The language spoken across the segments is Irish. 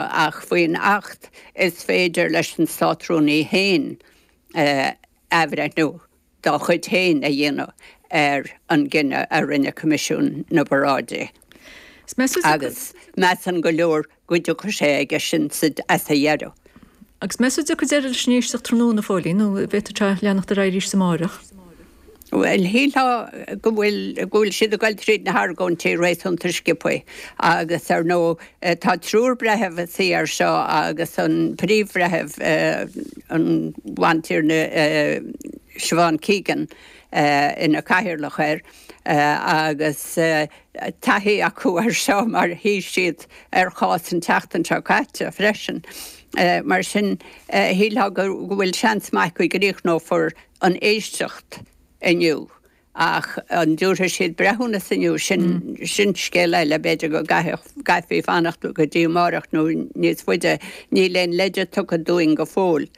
Ach faoin Acht is féidir leis an Státrúnaí fhéin athbhreithniú dá chuid fhéin a dhéanamh ar an gcinneadh a rinne Coimisiún na bParáidí agus measann go leor go dtiocfaidh sé aige sin as a dheireadh. Agus meas a dtiocfaidh deireadh leis an éisteacht tráthnóna, Phóilín, nó an bhféadfadh sé a bheith ag leanacht ar aghaidh arís amárach? Bhuel, shílfeá go bhfuil, go bhfuil siad ag dul tríd na hargóintí réasúnta scioptha agus, ar ndóigh, tá triúr breitheamh ag suí air seo agus an Príomh-Bhreitheamh, an Bhantiarna Siobhan Keegan ina cathaoirleach air agus taithí acu air seo mar shuigh siad ar chás an tseachtain seo caite freisin. Mar sin, shílfeá go bhfuil seans maith go gcríochnófar an éisteacht inniu ach an dtabharfaidh siad breithiúnas inniu sin scéal eile, b'fhéidir go gcaithfí fanacht go dtí amárach nó níos faide. Níl aon leide tugtha dúinn go fóill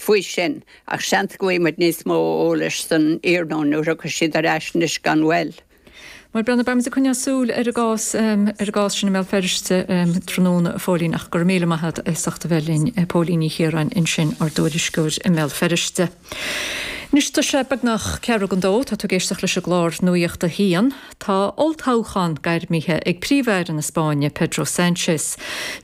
faoi sin ach seans go bhfaighimid níos mó eolais san iarnóin nuair a thiocfaidh siad ar ais anois gan mhoill. Mar a bhíonn, beidh muid ag coinneáil súil ar an gcás sin i mBéal Feirste tráthnóna, a Phóilín, ach go raibh míle maith agat as ucht a bheith linn. Póilín Ní Chiaráin ansin, ár dtuairisceoir i mBéal Feirste. Anois tá sé beagnach ceathrú don dó. Tá tú ag éisteacht leis an gclár Nuaíocht a hAon. Tá olltoghchán gairmithe ag Príomh-Aire na Spáinne, Pedro Sánchez.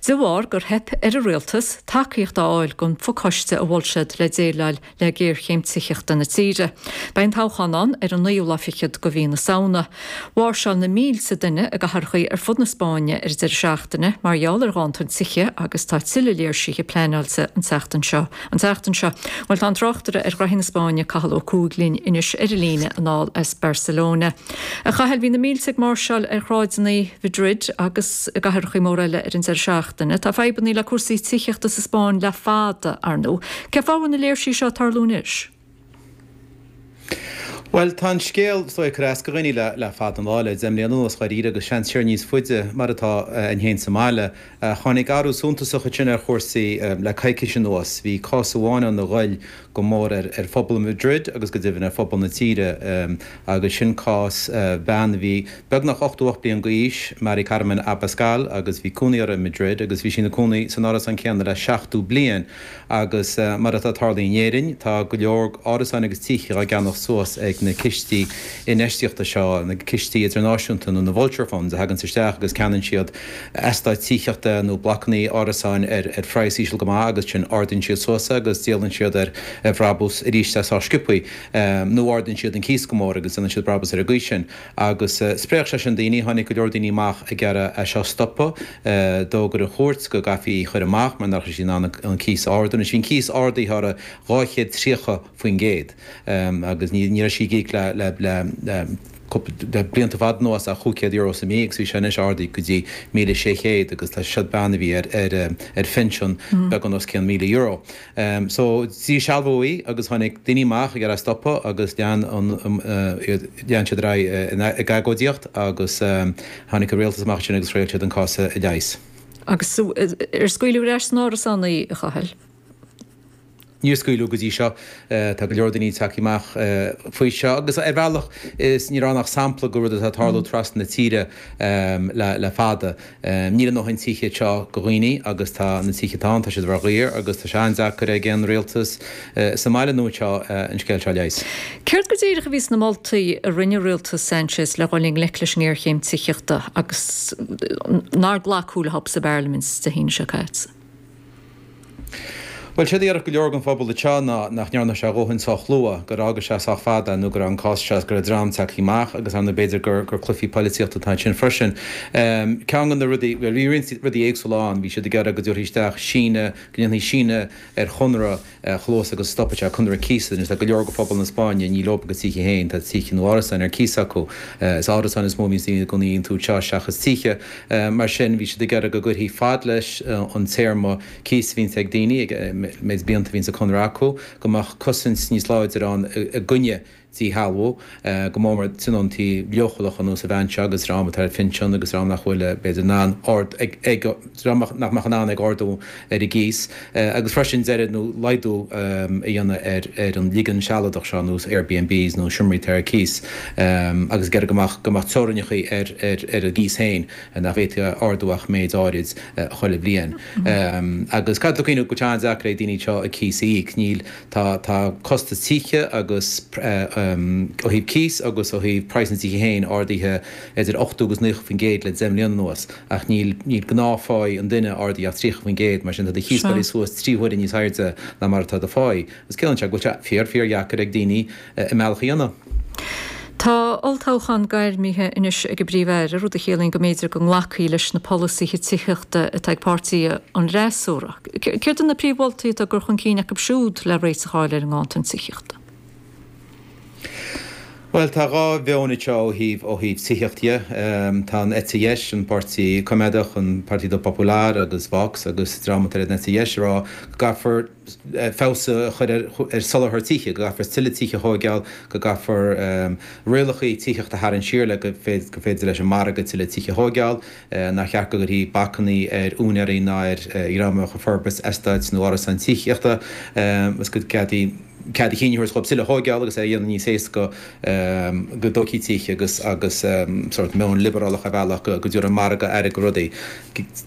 De bharr gur theip ar a rialtas tacaíocht a fháil don phacáiste a mhol siad le déileáil le géarchéim tithíochta na tíre. Beidh an toghchán ann ar an naoú lá fichead de mhí na Samhna. Mháirseáil na mílte duine i gcathracha ar fud na Spáinne ar an deireadh seachtaine mar gheall ar ghanntan tithe agus tá tuilleadh léirsithe pleanáilte an tseachtain seo. Bhuel tá an tráchtaire ar ghnaithí na Spáinne Cathal Ó Cuaig linn anois ar an líne anall as Barcelona. A Chathail, bhí na mílte ag máirseáil ar shráideanna Mhadrid agus i gcathracha móra eile ar an deireadh seachtaine. Tá fadhbanna le cúrsaí tithíochta sa Spáinn le fada, ar ndóigh. Cé fáth a bhfuil na léirsithe seo ag tarlú anois? Bhuel, tá an scéal so ag cur as go dhaoine le fada an lá, le deich mbliana anuas dháiríre agus seans siar níos faide mar atá againn fhéin sa mbaile. Tháinig athrú suntasach ansin ar chúrsaí le coicís anuas. Bhí cás amháin ann a ghoill go mór ar phobal Madrid agus go deimhin ar phobal na tíre agus sin cás bean a bhí beagnach 88 bliain d'aois, Mari Carmen Abascal agus bhí cónaí uirthi i Madrid agus bhí sí ina cónaí san árasán céanna le 70 bliain. Agus mar atá ag tarlú in Éirinn, tá go leor árasáin agus tithe dhá gceannacht suas ag na cistí infheistíochta seo, na cistí idirnáisiúnta nó na vulture funds a thagann isteach agus ceannaíonn siad eastáit tithíochta nó blocannaí árasáin ar phraghas íseal go maith agus ansin ardaíonn siad suas é agus díolann siad ar bhrabús arís é sách scioptha nó ardaíonn siad an cíos go mór agus déanann siad brabús ar an gcaoi sin agus spréach sé sin daoine. Tháinig go leor daoine amach ag iarraidh é seo a stopadh. D'fhógair an chúirt go gcaithfí í a chur amach mar nach raibh sí in ann an cíos a ardú. Anois bhí an cíos ardaithe orthu 230%, agus ní raibh sí ag íoc le le blianta fada anuas ach cúig chéad euro sa mí agus bhí sé anois ardaithe go dtí míle sé chéad agus tá sé ag bean a bhí ar ar phinsean beagán os cionn míle euro. Um so díshealbhaíodh í agus tháinig daoine amach ag iarraidh é a stopadh agus lean an um lean siad ar aghaidh ag agóidíocht agus um tháinig an Rialtas amach ansin agus thriail siad an cás a leigheas. Agus so ar scaoileadh ar ais san árasán í, a Chathail? Níor scaoileadh go dtí seo. Tá go leor daoine tagtha amach faoi seo agus ar bhealach ní raibh ann ach sampla de rud atá ag tarlú trasna na tíre um le fada. Níl a ndóthain tithe anseo go dhaoine agus tá na tithe atá ann tá siad thar a bheith daor agus tá sé an-deacair ag aon rialtas sa mbaile ná anseo an scéal seo a leigheas. Céard go díreach a bhí sna moltaí a rinne rialtas Sanchez le dhul i ngleic leis an ngéarchéim tithíochta agus nár glacadh leo sa bParlaimint Dé hAoine seo caite? Bhuel, séard a dhéarfadh go leor den phobal anseo ná nach ndearna sé a dhóthain sách luath, gur fhágadh sé sách fada nó go raibh an cás seo, go raibh dream tagtha amach agus ar ndóigh b'fhéidir gur cluichí polaitíochta atá ansin freisin. Ceann de na rudaí, bhuel bhí roinnt rudaí éagsúla ann, bhí siad ag iarraidh go dtabharfaí isteach síneadh, go ndéanfaí síneadh ar chonradh, cíos agus stopfadh sé conradh cíosa anois. Tá go leor de phobal na Spáinne ní leob a gcuid tithe féin, tá tithe nó árasáin ar cíos acu. Is árasáin is mó a bhíonns daoine ina gcónaí iontu anseo seachas tithe. Mar sin bhí siad ag iarraidh go gcuirfí fad leis an téarma cíosa a bhíonns ag daoine, an méid blianta a bhíonns sa gconradh acu, go mbeadh cosaint níos láidre ann i gcoinne díshealbhú, go mór mór tionóntaí leochaileacha ar nós an bhean seo agus dream atá ar phinsean agus dream nach bhfuil, b'fhéidir, in ann ard, ag, ag, dream nach mbeadh in ann ag ardú ar a gcíos agus freisin deireadh nó laghdú a dhéanamh ar, ar an ligean sealadach seo nó Airbnbs nó seomraí atá ar cíos agus ag iarraidh go mbeadh, go mbeadh teorainneacha ar, ar, ar an gcíos féin nach bhféadfaí a ardú ach méid áirid chuile bhliain. Agus caithfear cuimhneamh go bhfuil sé an-deacair ag daoine anseo a gcíos a íoc. Níl. Tá tá costas tithe agus ó thaobh cíos agus ó thaobh praghas na dtithe féin ardaithe idir 80 agus 90% le 10 mbliain anuas ach níl níl gnáthphá an duine ardaithe ach 30% mar sin tá do chíos gaibhte suas trí huaire níos airde ná mar atá do phá. Agus ciallaíonn sé sin go bhfuil sé fíor fíor dheacair ag daoine a mbealach a dhéanamh. Tá olltoghchán gairmithe anois ag an bPríomh-Aire, rud a chiallaíonn go mb'fhéidir go nglacfaí leis na polasaithe tithíochta atá ag páirtí an fhreasúra. Céard iad na príomh-mholtaí atá á gcur chun cinn acu siúd le réiteach a fháil ar an nganntan tithíochta? Bhuel, tá dhá mheon anseo ó thaobh, ó thaobh tithíocht dhe. Tá an eite dheis, an Páirtí Coimeádach, an Partido Popular agus Vox agus dream atá ar an eite dheis ag rá go gcaithfear, feabhas a chur ar soláthar tithe, go gcaithfear tuilleadh tithe a thóigeáil, go gcaithfear rialachaí tithíochta a tharraingt siar le go féidir leis an margadh tuilleadh tithe a thóigeáil, nár cheart go gcuirfí bacannaí ar úinéaraí ná ar dhream a bheadh ag forbairt eastáit nó árasáin tithíochta agus go gcaithfí cead a chinn a thabhairt dhóibh tuilleadh a thóigeáil agus é a dhéanamh níos éasca go dtóigfí tithe agus agus sórt meon liobrálach ar bhealach go dtabharfadh an margadh aire go rudaí.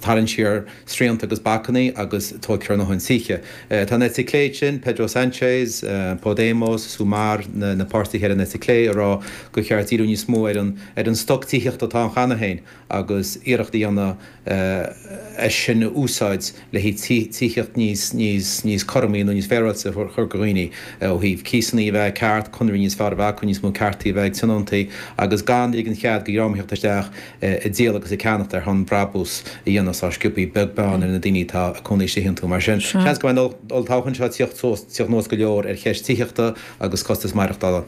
Tarraingt siar. srianta agus bacannaí agus tóigfear a ndóthain tithe. Tá an eite clé ansin, Pedro Sanchez, Podemos, Sumar, na páirtithe ar an eite clé ag rá gur cheart díriú níos mó ar an stoc tithíochta atá ann cheana féin agus iarracht a dhéanamh é sin a úsáid le haghaidh tithíocht níos cothroime nó níos féaráilte a chur ar fáil go dhaoine ó thaobh cíosanna a bheith ceart, conraí níos fearr a bheith acu, níos mó ceartaí a bheith ag tionóntaí agus gan ligean cead go dhream a thíocht isteach. ag díol agus ag ceannacht ar shon brabús a dhéanamh sách sciobthaí beag beann ar na daoine atá ag cónaí istigh iontu. Mar sin, seans go mbeidh an olltoghchán seo ag tíocht suas, tíocht anuas go leor ar cheist tithíochta agus costas maireachtála.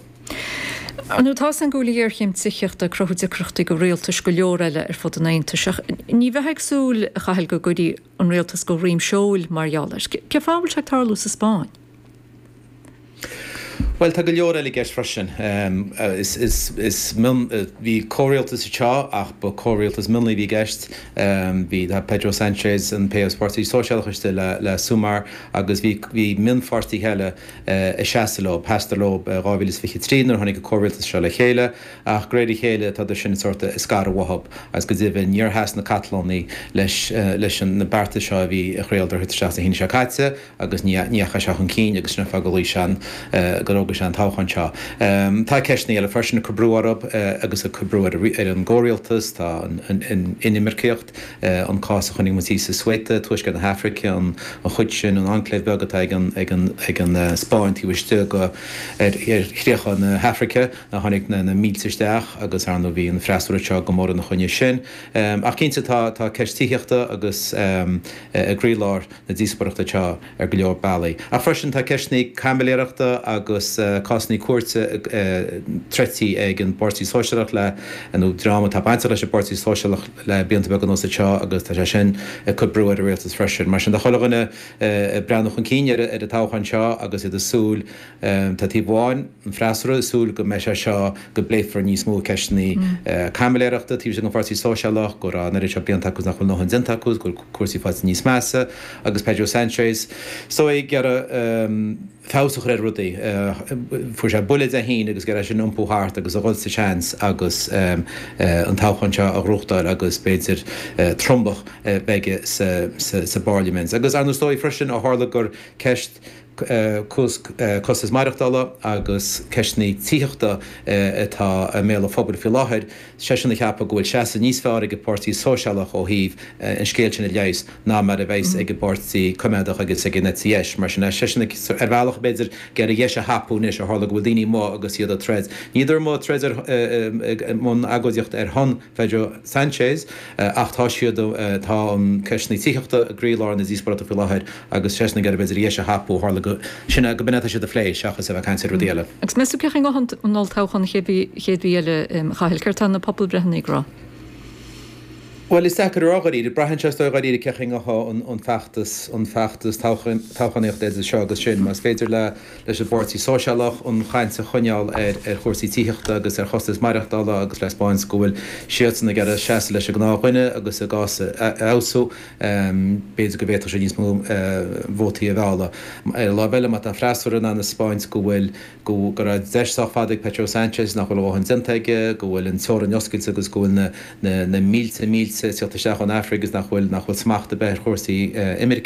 Now tá a fhios againn go bhfuil géarchéim tithíochta ag cruthú deacrachtaí go rialtais go leor eile ar fud an Aontais. Ach ní bheifeá ag súil, a Chathail, go gcuirfí an rialtas go dhroim seoil mar gheall air. Cé fáth a bhfuil sé ag tarlú sa Spáinn? Bhuel, tá go leor eile i gceist freisin. Is mion, bhí comhrialtas anseo ach ba comhrialtas mionlaigh a bhí i gceist. Bhí Pedro Sanchez, an PSOE, Páirtí Sóisialachais de le Sumar agus bhí mionpháirtithe eile ag seasamh leo, sheasadar leo i 2023 nuair a tháinig an comhrialtas seo le chéile ach go réir a chéile tá siad sin sórt ag scaradh uathu agus go deimhin níor sheas na Catalónaigh leis na beartais seo a bhí ag iarraidh a thabhairt isteach Dé hAoine seo caite. agus ní dheacha sé chun cinn agus sin an fáth go dtáinig sé ann gur fhógair sé an toghchán seo. Tá ceisteanna eile freisin ag cur brú orthu agus ag cur brú ar an gComhrialtas, tá an inimirceacht, an cás a chonaic muid sa Ceuta i Tuaisceart na hAifrice, an chuid sin, an enclave beag atá ag an Spáinn taobh istigh ar chríocha na hAifrice, a tháinig na mílte isteach agus ar ndóigh bhí an freasúra seo go mór ina choinne sin. Ach cinnte tá ceist tithíochta ansin i gcroílár. na díospóireachta seo ar go leor bealaí. Ach freisin tá ceisteanna caimiléireachta agus cásanna cúirte troidte ag an bPáirtí Sóisialach le, nó dream atá bainteach leis an bPáirtí Sóisialach le blianta beaga anuas anseo agus tá sé sin ag cur brú ar an Rialtas freisin. Mar sin, tá chuile dhuine ag breathnú chun cinn ar an toghchán seo agus iad ag súil Tá taobh amháin, an freasúra, ag súil go mbeidh sé seo, go bpléifear níos mó ceisteanna caimiléireachta taobh istigh den Pháirtí Sóisialach, go raibh an oiread seo blianta acu is nach bhfuil ndóthain déanta acu is go bhfuil cúrsaí faighte níos measa agus Pedro Sanchez seo ag iarraidh feabhas a chur ar rudaí. Fuair sé buille de thine agus ag iarraidh é sin a iompú thart agus a dhul sa seans agus an toghchán seo a fhógairt agus b'fhéidir tromlach a bheith aige sa bPárliament. Agus ar ndóigh freisin ó tharla gur ceist costas maireachtála agus ceisteanna tithíochta atá i mbéal an phobail faoi láthair, tá seisean ag ceapadh go bhfuil seasamh níos fearr ag an bPáirtí Sóisialach ó thaobh an scéil sin a leigheas ná mar a bheas ag an bPáirtí Coimeádach agus ag an eite dheis. Mar sin, tá seisean ag, ar bhealach, b'fhéidir, ag iarraidh an deis a thapú anois ó tharla go bhfuil daoine amuigh agus iad ag troid, ní hé ar mhaithe ag, i mbun agóidíochta ar shon Pedro Sanchez, ach tá siad, tá an, ceist na tithíochta i gcroílár na díospóireachta faoi láthair agus tá seisean ag iarraidh, b'fhéidir, an deis a thapú, ó tharla go, sin é, gob in atá siad a phlé seachas a bheith ag caint ar rudaí eile. Agus meas tú cén chaoi a ngabhfaidh an olltoghchán an chéad mhí, chéad mhí eile, Chathail, céard tá na pobalbhreitheanna ag rá? Bhuel, is deacair a rá dháiríre. Braitheann sé is dóigh dháiríre ar cén chaoi a dtéann, an feachtas, an feachtas toghchánaíochta idir seo agus sin. Más féidir le. leis an bPáirtí Sóisialach an chaint a choinneáil ar chúrsaí tithíochta agus ar chostas maireachtála agus a spáint go bhfuil siadsan ag iarraidh seasamh leis an ngnáthdhuine agus a gcás a fheabhsú. B'fhéidir go bhféadfadh sé níos mó vótaí a mhealladh. Ar an láimh eile má tá an freasúra in ann a spáint go bhfuil, go raibh deis sách fada ag Pedro Sanchez nach bhfuil a ndóthain déanta aige, go bhfuil an teorainn oscailte agus go bhfuil na mílte mílte ag teacht isteach ón Afraic agus nach bhfuil smacht ar bith ar chúrsaí imirce.